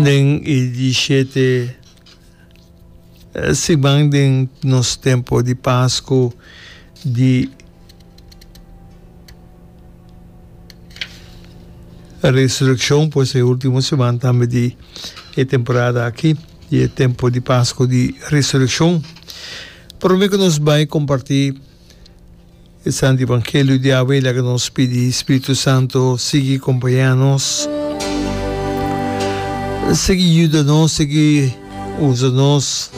Den e diesiete siman den nos tempo di Pasku di Resurekshon, pues e ultimo siman tambe di e temporada aki, di e tempo di Pasku di Resurekshon. Prome ku nos bai kompartí E Santu Evangelio di awe laga nos pidi Spiritu Santu sigui kompañá nos, sigui yuda nos, sigui usa nos,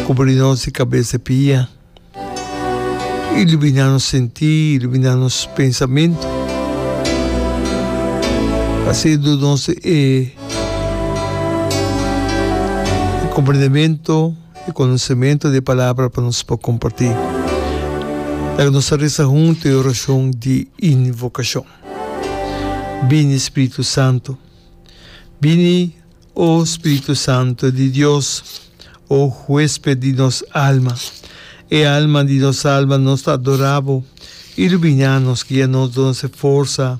kubri nos di kabes te pia, iluminá nos sentí, iluminá nos pensamentu, pa así duna nos e komprendementu. e konosementu di e palabra pa nos por kompartí. Laga nos ta resa huntu e orashon di invokashon, Bini Spiritu Santu, bini, o Spiritu Santu di Dios, o huesped di nos alma, e alma di nos alma, nos ta adorá bo, iluminá nos, guia nos, duna nos e forsa.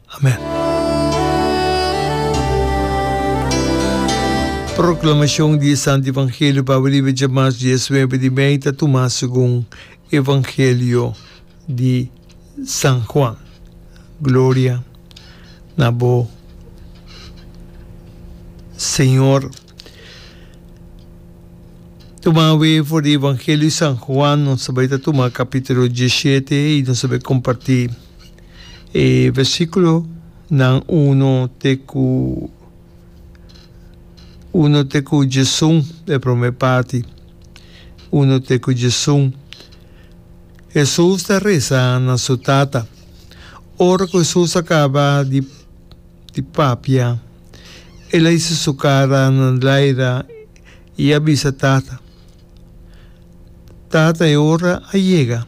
Amen. Proclamacion di e Santo Evangelio pasobra di beca mas diesnuebe di mei ta tuma segun Evangelio di San Juan. Gloria na bo, Señor. Tumawe for di Evangelio di San Juan, nos ta bai ta tuma capitulo diesshete y nos ta bai comparti. E versiculonan uno te cu uno te cu djesun, e prome parti, uno te cu djesun. Hesus ta reza na su Tata. Ora cu Hesus a caba di, di papia, el a hisi su cara na laira y a bisa Tata, Tata, e ora a yega.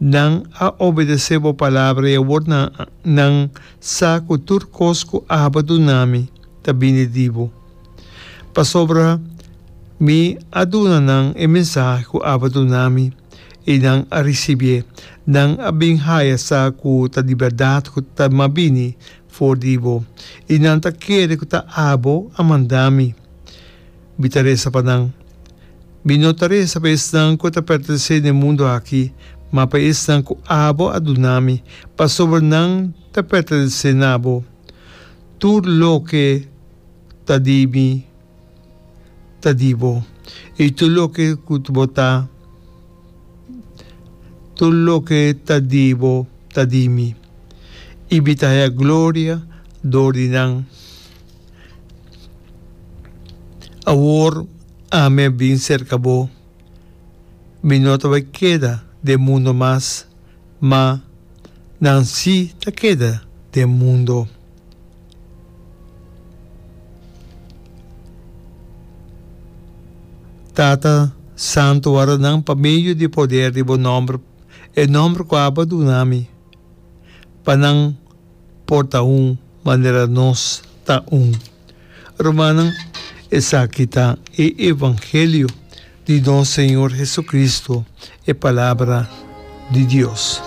Nan a obedesé bo palabra i awor nan, nan sa ku tur kos ku Abba duna mi ta bini di bo. Pasobra mi a duna nan e mensahe ku Abba duna mi, i nan a risibié. Nan a bin haya sa ku ta di bèrdat ku ta m'a bini for di bo, i nan ta kere ku ta abo a manda mi. Bi ta resa pa nan. Bi no ta resa pa esnan ku a ta pèrtensé na e mundu aki, ma pa esnan ku abo a duna mi, pasobra nan ta pèrtensé na abo. Tur loke ta di mi ta di bo, i tur loke ku bo ta tur loke ta di bo ta di mi, i bi ta haña gloria dor di nan. Awor ami a bin serka bo, mi no ta bai keda den mundo mas, ma nan si ta keda den mundo. Tata, santu wòrda nan pa medio di poder di bo nòmber, e nòmber ku abo a duna mi, pa nan por ta un manera nos ta un. Rumannan, esaki ta e evangelio di nos Señor Jesucristo, e Palabra di Dios.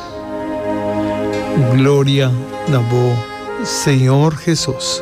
Gloria na bo, Señor Jesús!